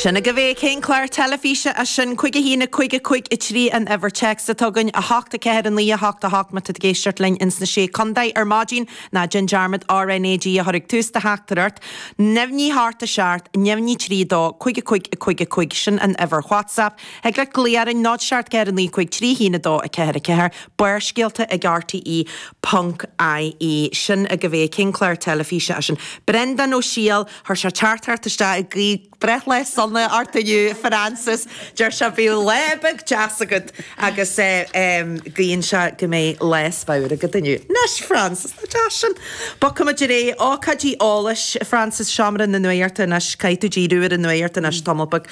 Sin agaibh é, cén clár teilifíse as sin? Cúig a haon, a cúig, a cúig a trí an uimhir téacs atá againn, a hocht, a ceathair, a naoi, a hocht, a hocht má tá tú ag éisteacht linn ins na Sé Condae ar maidin, ná déan dearmad RNAG a chur ag tús do theachtaireacht. Neamhní a hocht a seacht, neamhní trí dó, cúig a cúig, a cúig a cúig sin an uimhir WhatsApp. Thig leat glao orainn, náid seacht ceathair a naoi cúig trí haon a dó a ceathair a ceathair. Barrscéalta ag rte ponc ie Sin agaibh é, cén clár teilifíse as sin? Brendán Ó Siadhail. Chuir sé teachtaireacht isteach ag guí breithlá sona ort inniu, a Francis. Deir sé bíodh lá beag deas agat agus guíonn sé go mbeidh lá spadhar agat inniu. Anois, Francis, nach deas sin? Bogfaimid ar aghaidh. Ócáidí eolais, a Francis, Seomra na Nuaíochta anois, caithfidh tú díriú ar an nuaíocht anois tamall beag.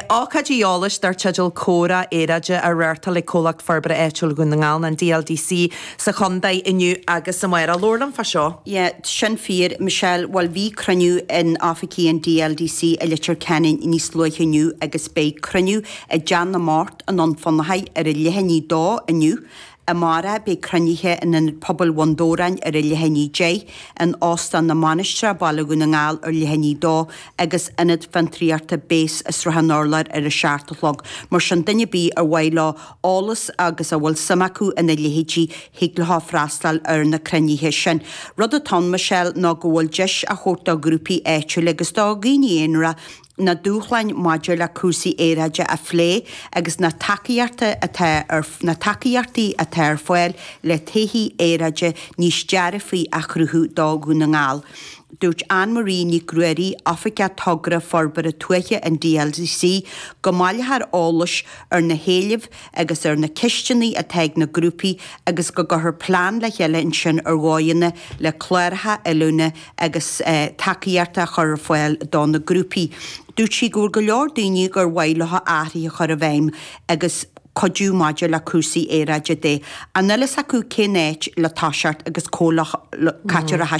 Ócáidí eolais dar teideal Comhrá Aeráide á reáchtáil ag Comhlacht Forbartha Áitiúil Dhún na nGall, an DLDC, sa chontae inniu agus amárach. Labhair liom fá seo. Yeah, sin fíor, Michelle, bhuel bhí cruinniú in oifigí an DLDC i Leitir Ceanainn níos luaithe inniu agus beidh cruinniú i dTeach na mBocht i nDún Fionnachaidh ar a leath i ndiaidh a dó inniu. Amárach beidh cruinnithe in Ionad Pobail Bhun Dobhráin ar a leath i ndiaidh a deich, in Óstán na Mainistreach Baile Dhún na nGall ar leath i ndiaidh a dó agus Ionad Fiontraíochta Base i Srath an Urláir ar a seacht a chlog. Mar sin duine ar bith ar mhaith leo eolas agus a bhfuil suim acu ina leithéidí, thig leo freastal ar na cruinnithe sin. Rud atá ann, Michelle, ná go bhfuil deis á thabhairt do ghrúpaí áitiúla agus do dhaoine aonara na dúshláin maidir le cúrsaí aeráide a phlé agus na tacaíochtaí atá ar fáil le todhchaí aeráide níos dearfaí a chruthú do Dhún na nGall. Dúirt Ann Marie Nic Ruairí, Oifigeach Togra Forbartha Tuaithe an DLDC, go mbaileofar eolas, ar na héilimh agus ar na ceisteanna atá ag na grúpaí agus go gcuirfear plean le chéile ansin ar dhóigheanna le cláracha oiliúna agus tacaíochta a chur ar fáil do na grúpaí. Dúirt sí go bhfuil go leor daoine gur mhaith leo athruithe a chur i bhfeidhm agus cuidiú maidir le cúrsaí aeráide de ach nach bhfuil a fhios acu cén áit le toiseacht agus comhlacht caitear a.